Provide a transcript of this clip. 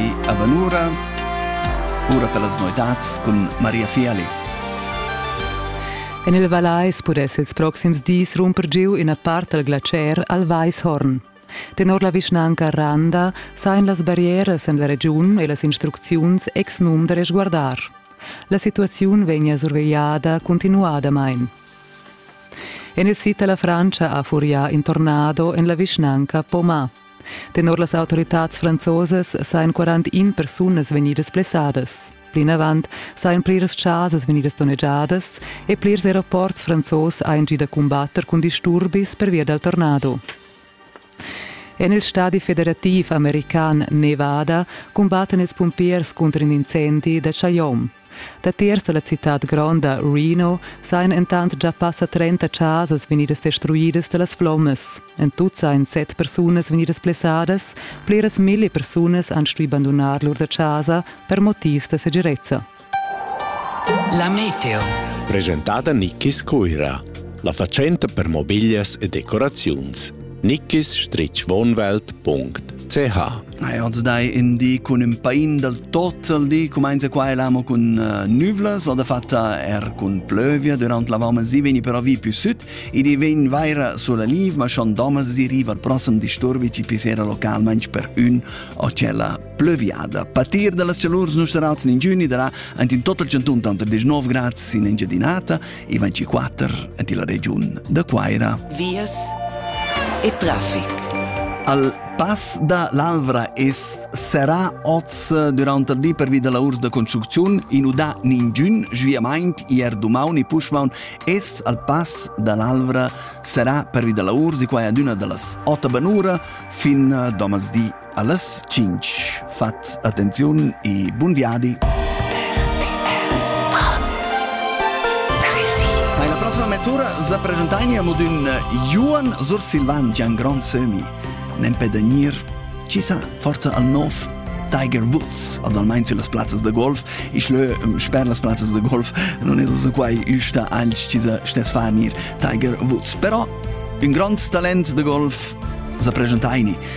E avanura ora per las noitads cun Maria Fiali. En il Vallais pudess ils proxims dis rumper giu ina part dal glacier al Weishorn. Tenor la vischnanca Randa sain las barrieras en la regiun e las instrucziuns ex num da resguardar. La situaziun vegna survegliada continuadamain. En il sid da la Francia ha furià in tornado en la vischnanca Poma. Tenor las autoritads franzosas sajan 41 persunas vegnidas blessadas. Plinavant sajan pliras chasas vegnidas donnegiadas e plirs aeroports franzos hajan gì da cumbatter cun disturbis pervia dal tornado. En il stadi federativ american Nevada cumbattan ils pumpiers cunter in incendi da Chaillon. Datiers da la citad gronda Reno sajan entant gia passa trenta chasas vegnidas destruidas da las flommas. En tut sajan set persunas vegnidas blessadas, pliras milli persunas han stuì bandunar lur da chasa per motivs da segirezza. La meteo. Presentada Nickis Cuira. La fatschenta per mobiglias e decoraziuns. nikkisstrichwohnwelt.ch als dai in di cun ün pain dal tot al di cumainza qua e l'amo cun uh, nüvlas o da fatta er cun plövia durant la vama si veni però vi più süt ed i vegn vaira sulla niv ma schon domers di riva al prossem disturbi ci pissera localmaing per ün o cella plöviada. Patir dallas celurs nusterals in giugni darà ant in total 119 grad sin Engiadinata i 24 en la regiun da Quaira. Vias e traffic. Al pass da l'Alvra es serà oz durant il di pervi da lavurs da construcziun inudà ningün sviamaint ier dumaun e puschmaun es al pass da l'Alvra serà pervi da lavurs di qua ad üna da las 8 banura fin domasdi Allas tschintg fat attenziun e bun viadi! Alla prossima mezz'ura sa presentain amo d'ün Johan Sursilvan già un grand sömi. Nempe da gnir, ci sa, forza al nov Tiger Woods, almain las plazzas da golf, ich lö sper las plazzas da golf non es so quai üsta alch ci sa stess far nir Tiger Woods. Però un grand talent da golf sa presentaini